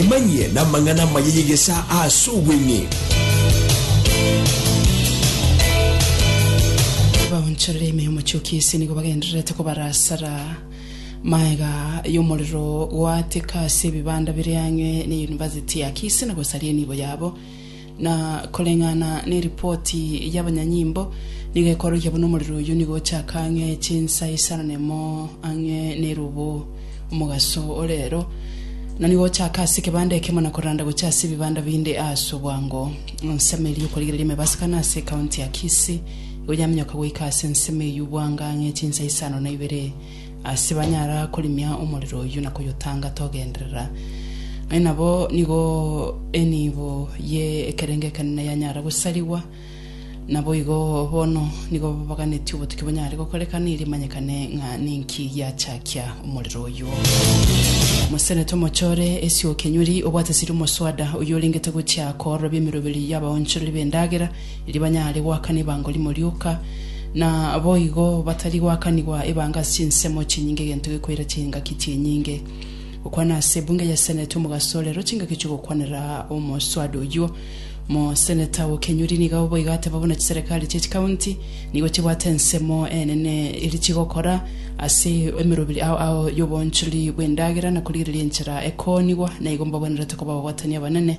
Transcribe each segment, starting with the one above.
Emanyie namang'ana amaya y'egesaa aase obweng'e. baonchorere ime y'omochioki ase nigo bagendererete kobarasara maega y'omorero goateka ase ebibanda bire ang'e ne University ya Kisii na gosaria enibo yabo Na koreng'ana neripoti y'abanyanyimbo, nigo ekorokia buna omorero oyio nigo ochaka ang'e chinsa isaranemo ang'e nerubu omogaso o reero, na nigo ochaka ase ekebanda ekemo na koranda gochia ase ebibanda binde aase obwango. Ensemo eria y'okorigereria emebasa kane ase ekaunti ya Kisii nigo yaminyoka goika ase ensemo eyio bwango ang'e chinsa isano na ibere. Ase banyara korimia omorero oyio na koyotangata ogenderera, aye nabo nigo enibo ye ekerengo ekenene yanyara gosarigwa. Naboigo bono nigo baganetie obotuki bonyare gokorekana erio emanyekane ng'a ninki giachakia omorero oyio. Mosenete omochore ase okenyori obwate siri omoswada oyio orengete gochia koororobia emeroberi y'abaonchoreri b'endagera, erio banyare goakana ebango rimo rioka, na boigo batari goakanigwa ebango ase chinsemo chinyinge egento gekoira chingaki chinyinge. Gokwana ase ebunge ya Senate Omogaso rero chingaki chi'ogokwanera omoswada oyio. Omoseneta o Kenyuri niga oboigo ateba buna chiserekari chie chikaunti nigo chibwate ensemo enene eri chigokora ase emeroberi ao ao y'oboonchori bw'endagera na korigereria enchera ekoonigwa naigo mbagwenerete koba abagoatani abanene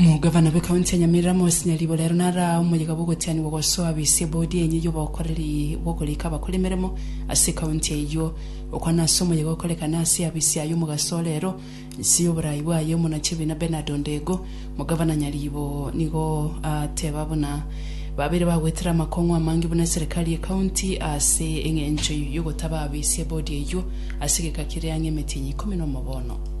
Omogavana bw'Ekaunti ya Nyamira Amos Nyaribo rero nara omoyega bw'ogotianigwa gosoa bisi ebodi enye y'obokoreri bw'okorika abakori emeremo ase ekaunti eyio. Okwana ase omoyega okorekana ase abisi ayio omogaso o rero inse y'oborai bwaye Omonachiebina Bernard Ondego, Omogavana Nyaribo nigo ateba buna babeire bagoetera amakong'u amange buna eserekari y'ekaunti ase eng'encho y'ogotaba abisi ebodi eyio ase egeka kiria ang'e emetienyi ikomi nomo bono.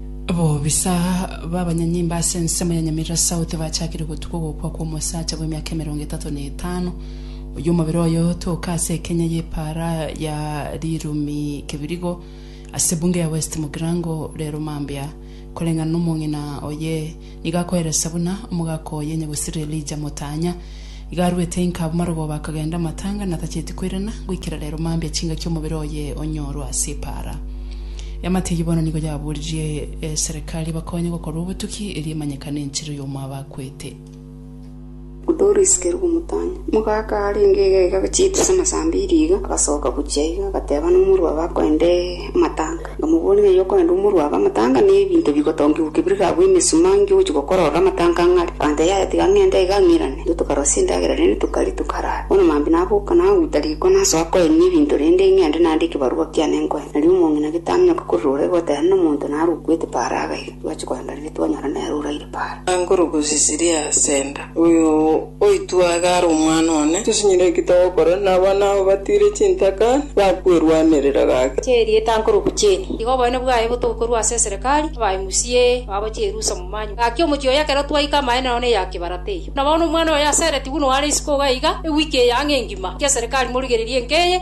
Bobisa b'abanyanyimbo ase ensemo ya Nyamirira South bachakire gotuka ogokwa kw'omosacha bw'emiaka emerongo etato na etano oyio omobere oye otoka ase ekenya y'epaara ya Rirumi Kibirigo ase Bunge ya West Mugirango rero mambia koreng'ana nomong'ina oye Nigo akoeresia buna omogaka oye onye gosirire Elija motanya. Iga arwete inka abwo marogoba akagenda amatanga na tacheti koirana goikera rero mambia chingaki omobere oye onyorwe ase epaara. Eamate eyio bono nigo yaboririe eserekari ebakonye gokorwa obotuki erio emanyekane enchera y'omo abakwete. Doris keria ogomotaanya. Omogaka arenge egega achiete ase amasambi e riiga, agasoka gochia iga, agateba nomorwabe akoende amatanga. Nkamoboria, Ng'ai okoenda omorwabe amatanga? Na ebinto bigotongigwa ki biri gabwo emesuma inki ogochia gokora ororo amatanga ang'e are? Akantebia, Yaya, tiga ng'ende iga ng'irane. Intwe tokarosia endagera rende tokaria, tokarara. Bono maambia naboka naguta riko nasoa koenia ebinto rende ng'ende nande ekebarua kiane nkoe. Nario omong'ina gete aminyoka korire ore goteena nomonto narukwete paraga iga. Twache koenda riria twanyora nere oraire Para. Angoro gosisiria Senda. Oyo oitwe iga are omwana one. Tosinyire ki togokora, na abana abo batiire chintaka, bakwerwanerera gaki. Chia erieta Angoro gocheni. Iga oboene bwaye botobe korwa ase eserekari, abae musie, babo chierusa momanywe. Gaki omochie oyo ekero twaika amaene nao neya kebarata eyio. Na bono omwana oyo aseretigwe nore isiko iga iga, ewiki eye ang'e engima, ekeserekari morigererie enka eye.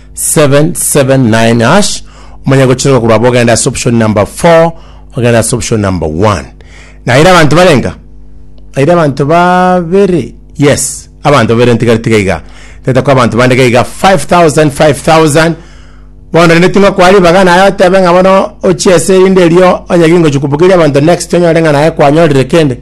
779 hash omanye gochireka korwa abo ogenda ase option number 4 ogenda ase option number 1 naire abanto barenga naire abanto babere yes abanto babere ntigari tiga iga tete kwa abanto bande gaiga 5000 5000 bono rende ting'o kwa ribaga naye otebe ng'a bono ochie ase erinde erio onye gingochi kobugeria abanto next onyore ng'a naye kwanyorire kende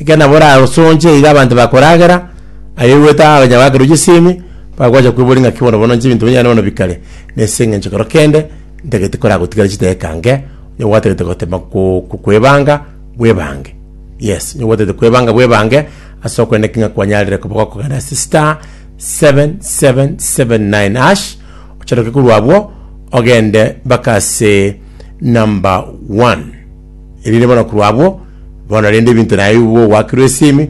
ekero nabo orasonche iga abanto bakoragera Aye oigwete aa onye abakire oche semi, bagocha kweboria ng'aki bono bono inche ebinto binyane bono bikare, na ase eng'encho ekero kende ntagete koragotigare chidaeka nke, onye gwatagete gotema ko- ko- kwebanga, bwebange. Yes, onye gwatagete kwebanga bwebange, ase okwenda ki ng'a kwanyarire koba gokogenda ase star, seven, seven, seven, nine hash, ocharoke korwa abwo, ogende mpaka ase number one. Erinde bono korwa abwo, bono rende ebinto naye igo ogoakirwe esemi.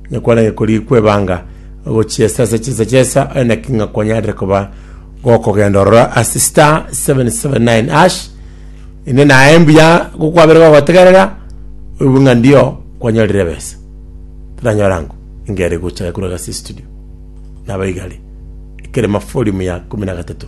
Nekwarenge korikwa ebanga, gochiesa ase chinsa chi'esa, aye naki ng'a kwanyarire koba gokogenda ororo ase star 779#, inde naye mbuya gokwabere gogotegerera, oigwe ng'a ndio kwanyorire ebesa. Toranyora ango, enga ere gocha ekorwa gase estudio. Nabo igare, ekerema folimu ya ikomi na gatato.